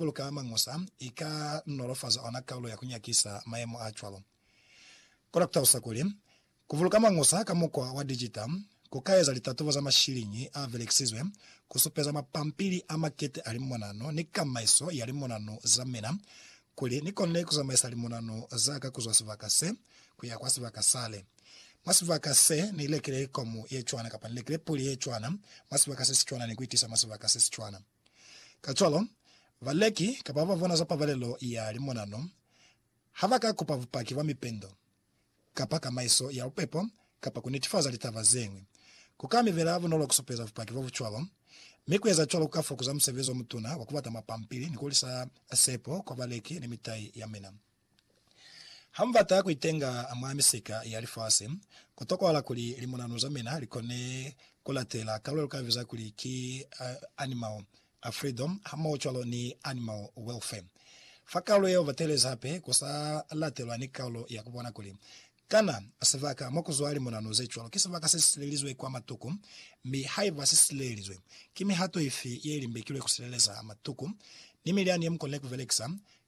Kuluka Mañusa i ka nolofaza ona kaulo ya ku nyakisa mayemo a cwalo. Kona ku talusa kuli, Ku buluka mañusa ka mukwa wa dijita ku ka eza litatubo za mashiliñi a belekisizwe ku supeza mapampili a makete a limonanu ni kamaiso ya limonanu za mina kuli ni konile ku zamaisa limonanu za ka ku zwa sibaka se ku ya kwa sibaka sale. Mwa sibaka se, ni lekile komu ye cwana kapa ni lekile puli ye cwana mwa sibaka se si cwana ni ku i tisa mwa sibaka se si cwana. Kacwalo, baleki kapa babona za pabalelo ya limonano ha ba ka kupa bupaki bwa mipendo kapa kamaiso ya bupepo kapa ku netifaza litaba ze ñwi. Ku ka mi bela bunolo ku supeza bupaki bo bu cwalo, mi ku eza cwalo ku ka fokuza musebezi o mutuna wa ku bata mapampili ni ku lisa sepo kwa baleki ni mitai ya mina. Ha mu bata ku itenga mwa misika ya lifasi, ku tokohala kuli limunanu za mina li kone ku latela kalulo lu ka biza kuli ki Animal Freedom hamohocwalo ni Animal Welfare. Fa kalulo yeo ba teelezi hape ku sa latelwa ni kalulo ya ku bona kuli kana sibaka mo ku zwa limunanu ze cwalo ki sibaka se si silelizwe kwa matuku, mi haiba si silelizwe, ki mihato ifi ye li mbekilwe ku sileleza matuku ni milyani ye mu konile ku belekisa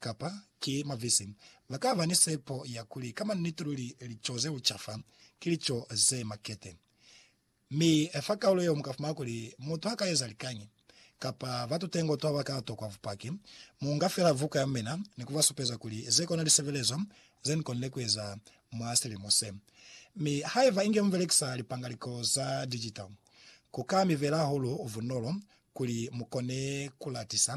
Kapa, ki mavisi. Ba ka ba ni sepo ya kuli ka maniti luli lico ze uca fa ki lico ze makete. Mi fa kaulo yeo mu ka fumana kuli mutu ha ka eza likañi, kapa ba tutengo to ba ka tokwa bupaki, mu nga fela vuka ya mina ni ku ba supeza kuli ze kona lisebelezo ze ni konile ku eza mwa silimo se. Mi haiba inge mu belekisa lipangaliko za digital, ku ka mi bela hahulu bunolo kuli mu kone ku latisa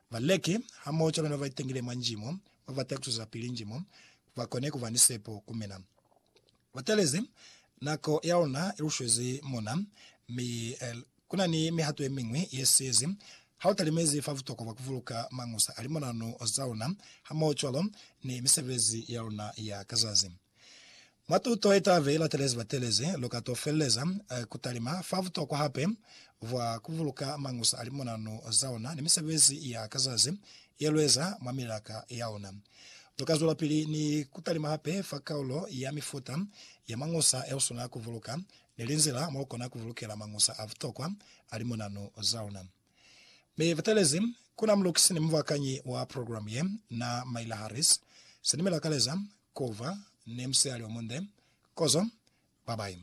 Baleki hamoho cwalo ni babaitengile mwa njimo babata kucwezapili njimo bakone kuba ni sepo ku mina. Batalezi nako ya luna ilushwezi mona, mi kunani mihato yemiñwi yesiyezi hautalimezi fa butokwa bwa kubuluka mañusa a limonanu zaluna hamoho cwalo ni misebezi yaluna ya ka zazi. Mwa tuto ye t'a be latelezi batelezi, lu ka t'o feleleza ku talima fa butokwa hape bwa ku buluka mañusa a limonanu za ona ni misebezi ya ka zazi ye lu eza mwa milaka ya ona. Lu ka zwelapili ni ku talima hape fa kaulo ya mifuta ya mañusa ye u swanela ku buluka ni linzila mo lu kona ku bulukela mañusa a butokwa a limonanu za ona. Mi batelezi ku na mulukisi ni mubakanyi wa program ye na Myla Harris, se ni mi lakaleza ku ba ni musihali omunde. Kozo! Bye bye.